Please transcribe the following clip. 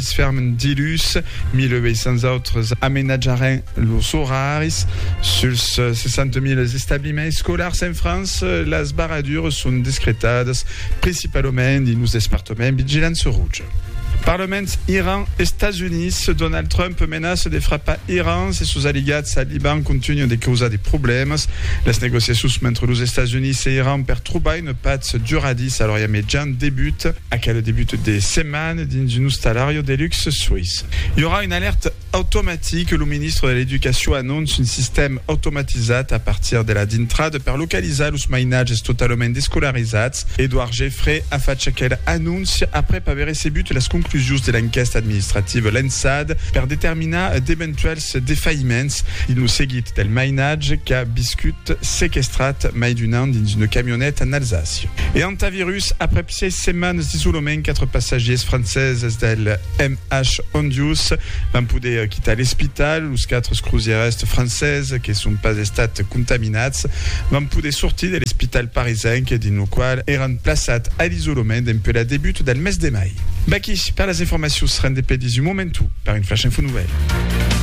Es fermes dilhus 1.800 autres amenatjaràn los oraris suls 60.000 establiments escolars en França. Las barradures son discretadas principalament dins los despartaments Vigilança Roja. Parlaments Iran, Estats Units, Donald Trump menaça de frapar Iran se sos aliats al Liban contunhan de causar de problèmas. Las negociacions mentre los Estats Units e Iran per trobar una patz duradissa a l'Orient Mejan debuta aquel debut de setmana. dins un ostalario de luxe soïs. I aurà una alèrta automatica, lo ministre de l'Educacion anonça un sistèma automatizat a partir de la dintrada per localizar los mainatges totalament descolarizats. Edouard Geffray a fach aquela anóncia aprèp aver recebut las conclusions de l'enquèsta administrativa lançada per determinar d'eventuèls defaïments dins lo seguit del mainatge qu'a viscut sequestrat mai d'un an dins una camioneta en Alsàcia e Hantavirus aprèp Sièis setmanes d'isolament, quatre passatgiers franceses del MH Hondius van poder quitar l'espital. Los quatre crosièrs franceses que son pas estats contaminats van poder sortir de l'espital parisenc dins lo qual èran plaçats a l'isolament dempuèi la debut del mes de mai. V'aquí per las informacions rendepedis un momentu per un flash info nouvèl.